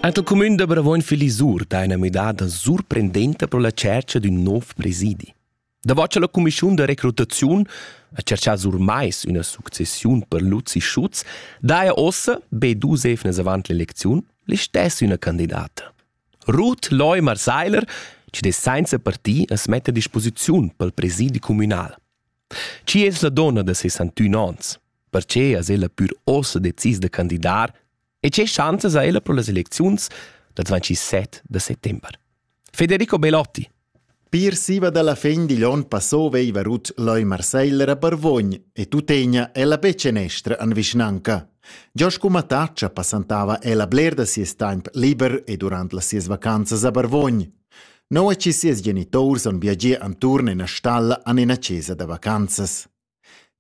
Ant il cumün da Bravoin Filisur dà üna müdada surprendenta pro la tschercha d'ün nouv presidi. Davò cha la cumischiun da recrutaziun ha tscherchà sur mais üna successiun per Luzi Schutz, daja ossa, be dus evnas avant l'elecziun, l'istess üna candidata. Ruth Leumar-Seiler, chi dess sainza parti as metta a disposiziun pel presidi cumünal. Chi es la donna da sessantün ons? Perche as ella pür uossa decis da candidar e che schanzas ha ella pro las elecziuns dal 27 da settember? Federico Belotti Pir siva dalla fin digl onn passò veiva rut l'oi Marseille a Barvogn e tuttegna ella be cenestra an vischnanca. Giò scu mataccia passantava ella bler da sies taimp liber e durant las sies vacanzas a Barvogn. Nua che sias geniturs han viagià enturn ina stalla en ina chesa da vacanzas.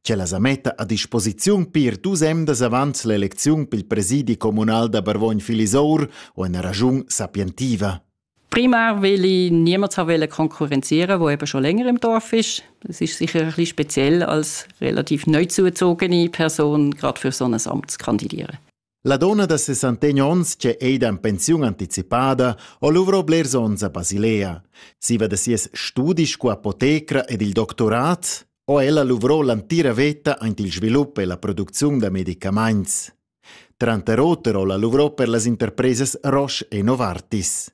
Ch'ella sa metta a disposiziun pir dus emdas avant l'elecziun pel presidi communal da Barvogn-Filisour o ina ragiun sapientiva. Primär, weil ich niemals wollte konkurrenzieren, wo eben schon länger im Dorf ist. Das ist sicher ein bisschen speziell als relativ neu zugezogene Person gerade für so ein Amt zu kandidieren. La donna da sessantegn onns che ei da pensiun anticipada ho luvro blers onns a Basilea. Siva da sies studi sco apotecra ed il doctorat ho ella luvro l'antira veta aint il svilup e la producziun da medicamaints. Tranter oter ho la luvro per las interpresas Roche e Novartis.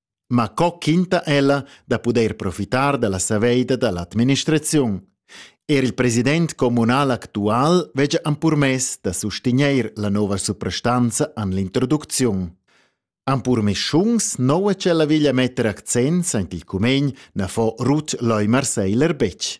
Ma co quinta ella da pudair profitar da la saveida da l'administraziun? Er il president communal actual veggia ampurmess da sustegnair la nova suprastanza en l'introducziun. Ampurmischuns noua che la veglia metter accents en il cumegn na fo Ruth Leumar-Seiler betg.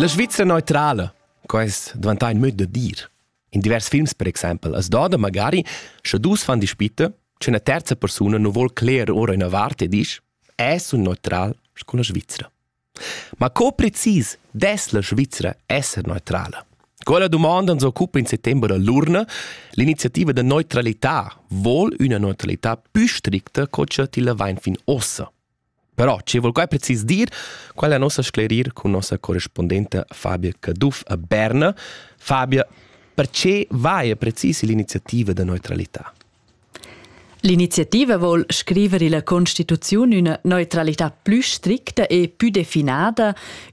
La Svizra neutrala, quest dvantà in möd da dir. In divers films, per exempel, as doda magari, sche dus fan dispitte, che una terza persona non vuol clear ora una vart e dice es un neutral con la Svizzera. Ma co precis dess la Svizra esser neutrala? Quella dumonda ans occupa in settember da l'urna. L'iniziativa da neutralità vuol üna neutralità pü stricta co cha tilla vain fin ossa. Però ci vol quai precis dir, qual è nossa sclerir con nossa correspondente Fabia Caduff a Berna. Fabia, perché vaia precis l'iniziativa da neutralità? L'iniziativa vol scriver illa constituziun üna neutralità plü stricta e pü definada,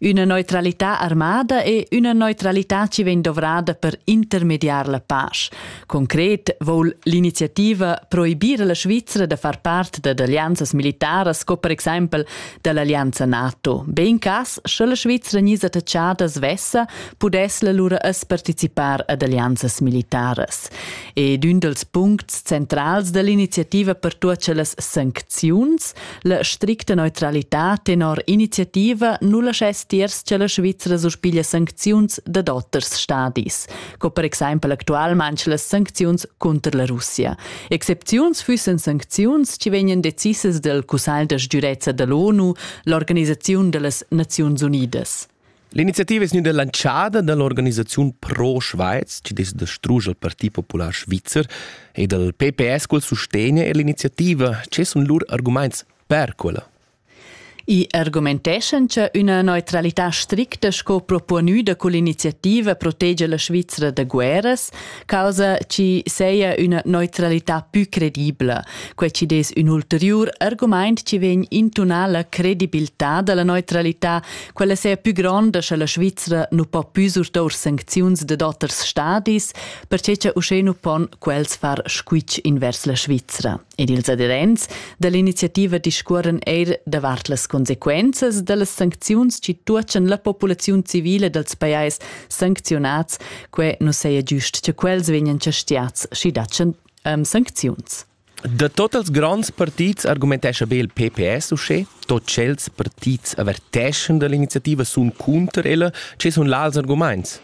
üna neutralità armada e üna neutralità chi vegn dovrada per intermediar la pasch. Concret vol l'iniziativa proibir la Svizra da far part da alleanzas militaras sco per exaimpel da l'allianza NATO. Be in cas, sche la Svizra gnisa attachada svessa, pudess la lura as participar ad alleanzas militaras. ed ün dels puncts centrals dell'iniziativa per tuots las sancziuns, la stricta neutralità tenor iniziativa nu laschess tiers che la Svizzera suspiglia sancziuns dad oters stadis, co per exaimpel actualmaing las sancziuns conter la Russia. Excepziuns füssen sancziuns che vegnan decisas del Cussagl da sgürezza dell'ONU, l'Organisaziun dellas Naziuns Unidas. L'iniziativa es gnüda lantschada da l'organisaziun Pro Schweiz, chi dess distruger il Parti Popular Svizzer, e dal PPS cul sustegn e l'iniziativa che sun lur argumaints per quella. I argumenteschan cha üna neutralità stricta sco proponüda cull'iniziativa protegia la Svizra da guerras, causa chi seia üna neutralità pü credibla. Quai ci des ün ulteriur argumaint chi vegn intunà la credibiltà da la neutralità, quella sea pü gronda scha la Svizzera nu po pü surtour sancziuns dad oters stadis, perche cha uschè nu pon quels far squitsch invers la Svizzera. ed ils adherents dall'iniziativa discuoran eir davart las consequenzas dallas sancziuns chi tuotschan la populaziun civila dals pajais sancziunats, que nu saja giust cha quels vegnan chastiats schi datschan um, sancziuns. Da tot els gronds partits argumentescha be il PPS uschè, tot tschels partits averteschan dall'iniziativa sun cunter ella, che sun là als argumaints.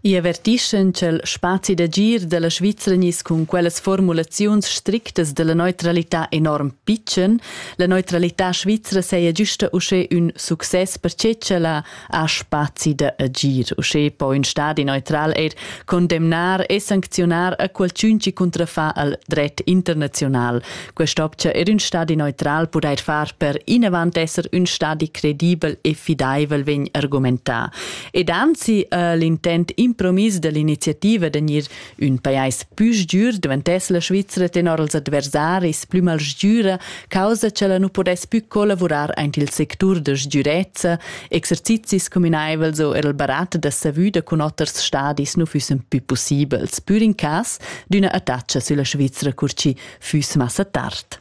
I avertischan cha'l spazi d'agir da la Svizra gniss cun quellas formulaziuns strictas da la neutralità enorm pitschen. La neutralità svizra saja güsta uschè ün success perche ch'ella ha spazi da agir. Uschè po ün stadi neutral eir condemnar e sancziunar a qualchün chi cuntrafà al dret internaziunal. Quest opcha eir ün stadi neutral pudair far per inavant esser ün stadi credibel e fidaivel vegn argumentà. Ed anzi äh, l'intent impromis dell'iniziativa de gnir ün pajais plü sgür diventess la Svizzera tenor als adversaris plü mal sgüra causa che la nu podess più collavurar aint il sectur de sgürezza, exercizis communaivels o er il barat da savüda cun oters stadis nu füssen più possibels, pür in cas d'üna attacha sülla Svizzera cur chi füss massa tard.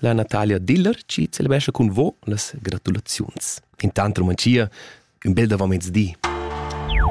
La Natalia Diller ci celebrescha cun vo las gratulaziuns. Intant romanzia, ün bel davomezdi.